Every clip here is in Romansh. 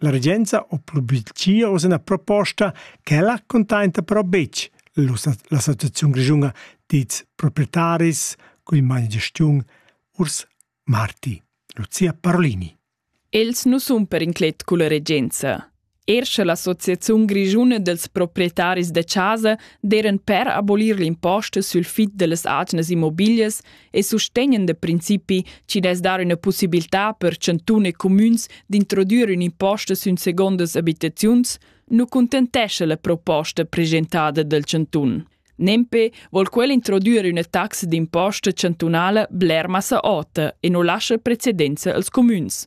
La regenza ha publitgia oz ina proposta ch'ella cuntainta però betg l'associaziun grischuna dits proprietaris cun magna gestiun Urs Marti. Lucia Parolini. Els nu sun per inclet culla regenza. Er sche l'Associaziun grischuna dels proprietaris de casa deren per abolir l'imposta sul fit de les agnes immobilias, e sustegnen da principi chi dess dar üna pussibiltà per chantun e cumüns d'introdüer ün'imposta sün segondas abitaziuns, nu cuntentescha la proposta presentada dal chantun. Nempe vol quel introdüer üna taxa d'imposta chantunala bler massa ota e nu lascha precedenza als cumüns,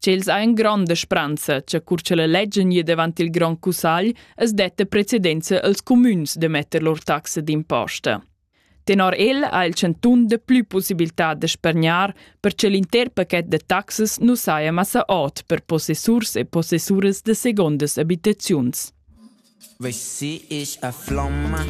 Ch'els ha ün gronda spranza cha cur cha la leggia gnir davant il grand cussagl as detta precedenza als cumüns da metter lur taxa d'imposta. Tenor el ha il chantun dapplü possibilità da spargnar per cha l'inter paquet da taxas nu saja massa ot per possessurs e possessuras da segondas abitaziuns. Vessi ich a Flamma